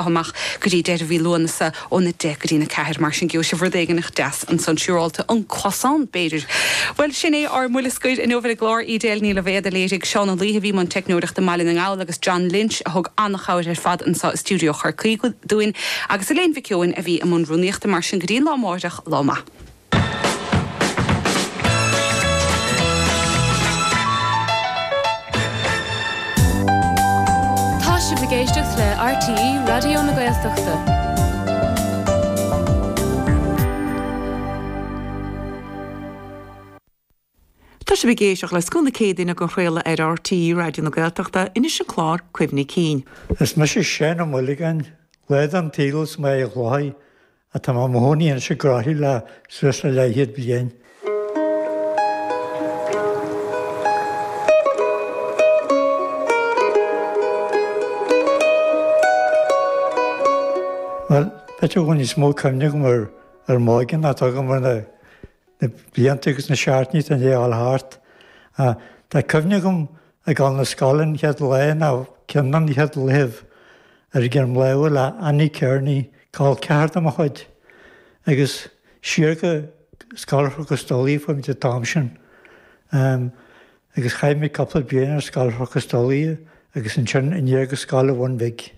amach go dtí deireadh mhí Lúanasa ón 10 go dtí'n 4. Mar sin gheobhaidh sibh rud éigin deas ansan, siúrálta, un croissant b'fhéidir. Bhuel, sin é ár mbuille scoir inniu ar an gclár, Edel Ní Loibhéad a léirigh, Seán Ó Laoithe a bhí i mbun teicneoireachta i mBaile na nGall agus John Lynch a thug an-chabhair ar fad anso i stiúideo Chorcaí dúinn agus Elaine Mhic Eoin a bhí i mbun rúnaíochta. Mar sin go dtí'n lá amárach, lá maith. Tá sibh ag éisteacht le RTÉ Raidió na Gaeltachta. Tá sibh ag éisteacht le scoth na Céadaoine den chraoladh ar RTÉ Raidió na Gaeltachta anois an clár Cuimhní Cinn. Is mise Seán Ó Maolagáin, lá den tsaol as Machaire Chlochair ach tá mé i mo chónaí anois i gCroithlí le suas le leathchéad bliain. Bhuel, b'fhéidir go bhfuil níos mó cuimhne agam ar m'óige ná atá agam ar na. na blianta agus na seachtainí atá i ndéidh a ghabháil thart. Tá cuimhne agam ag dul 'na scoile an chéad lá nó ceann de na chéad laethibh ar greim láimhe le Annie Kearney, col ceathar de mo chuid, agus siar go Scoil Chnoc an Stolaire a chuaigh muid an t-am sin agus chaith mé cupla bliain ar Scoil Chnoc an Stolaire agus ansin aniar go Scoil a' Bhun Bhig.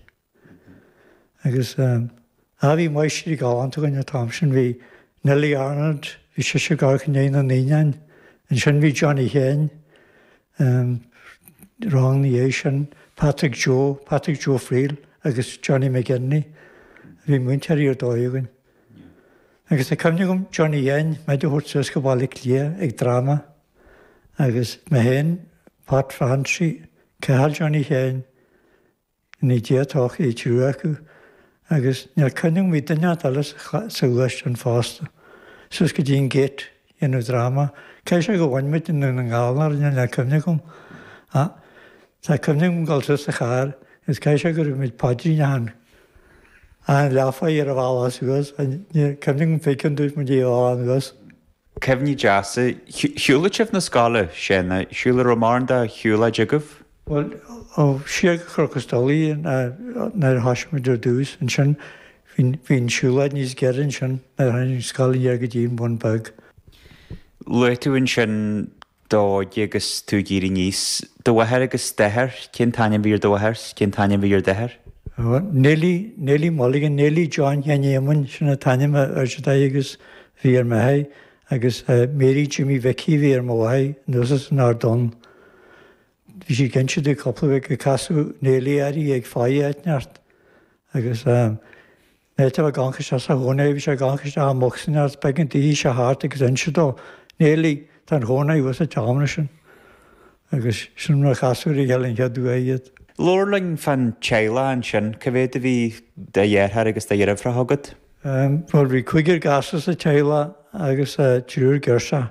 Agus, ah, bhí máistrí galánta againn an t-am sin, bhí Nellie Arnold, bhí sise ag amharc i ndéidh na naíonán, ansin bhí Johnny Sheáin, rang ina dhiaidh sin, Patrick Joe, Patrick Joe Friel agus Johnny McGinley, bhí múinteoirí ar dóigh againn. Agus tá cuimhne agam Johnny Sheáin muid a thabhairt suas go Baile Átha Cliath ag dráma agus mé féin, Pat Francie, Cathal Johnny Sheáin, Ní d'fhéadfadh é triúr acu agus níl cuimhne agam, bhí duine inteacht eile suas ann fosta. Suas go dtí an Gate a dhéanamh dráma caithfidh sé gur bhain muid Dún na nGall orainne níl cuimhne agam ach tá cuimhne agam dul suas sa charr agus caithfidh sé go raibh muid paidrín achan leathuair ar an bhealach suas ach níl cuimhne agam cá mhéad cionn a dúirt muid ar an bhealach anuas. Cuimhní deasa. Shiúladh sibh 'na scoile? Sé, shiúladh. Raibh mórán de shiúlóid agaibh? Bhuel, ó, siar go Cnoc an Stolaire nuair a thoisigh muid ar dtús, ansin bhí an siúlóid níos giorra ansin nuair a tháinig an scoil aniar go dtí an Bun Beag. Luaigh tú ansin d'óige agus tú ag éirí aníos. Do mháthair agus d'athair, cén t-ainm bhí ar do mháthair 's cén t-ainm bhí ar d'athair? Ó, Nellie, Nellie Mulligan, Nellie John Sheáin Éamoinn, sin an t-ainm ar Daidí agus bhí ar m'athair agus Mary Jimmy Mhicí a bhí ar mo mháthair anuas as an Ard Donn. Bhí sí ag inse di cúpla gur casadh Nellie uirthi ag faire áit ineacht agus. in áit a bheith ag amharc isteach sa chónair, bhí sé ag amharc isteach i mbocsa ann is b'éigean dise a theacht agus inse dó, Nellie, tá an chónair thuas sa tseomra sin. Agus sin mar a casadh ar a chéile an chéad uair iad. Labhair linn fán teaghlach ansin, cá mhéad a bhí de dheartháir agus de dheirfiúracha agat? Bhuel bhí cúigear gasúr sa teaghlach agus triúr girseach.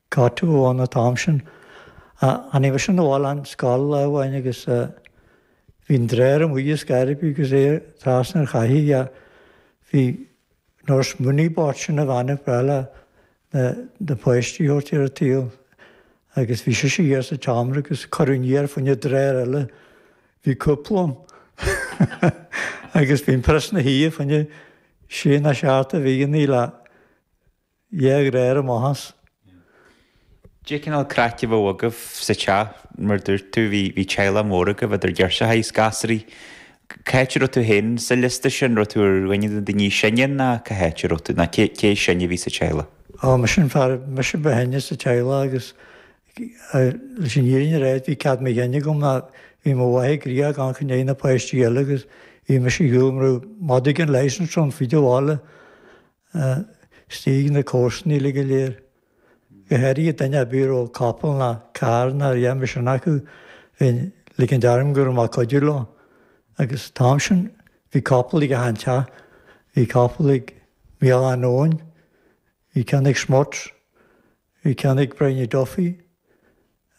Tá tú ann an t-am sin. Tháinig mise 'na bhaile ón scoil lá amháin agus bhí an dréar amuigh as cupboard agus é trasna ar chathaoir bhí nurse Mooney bpáirt sin an bhean ag breith le na páistí a thabhairt ar an tsaol agus bhí sise thiar sa tseomra agus cuireadh aniar fá choinne dréar eile bhí cúpla ann agus bhí an prios ina shuí fá choinne sé ná seacht de bhlianta eile dhá dhréar amach as. Caidé an cineál craic a bheadh agaibh sa teach? Mar a dúirt tú, bhí teaghlach mór agaibh, idir ghirseachaí is gasraí. Cá háit a raibh tú féin sa liosta sin? Raibh tú ar dhuine de na daoine is sine ná cá háit a raibh tú, ná cé is sine a bhí sa teaghlach? Á, mise an fear, mise ba shine sa teaghlach agus leis an fhírinne a rá bhí cead mo chinn agam ná bhí mo mháthair gnoitheach ag amharc i ndiaidh na páistí eile agus bhí mise ar shiúl mar bheadh madadh gan licence ar fud an bhaile istigh ag na comharsana uilig go léir, go h-áirithe duine a' bith a raibh capall ná carr ná a dhath mar sin acu, bheinn 'ligint orm go raibh mé a' cuidiú leo. Agus an t-am sin bhí capall ag 'achan teach, bhí capall ag Micheáláin Eoin, bhí ceann ag Smuts, bhí ceann ag Briany Duffy,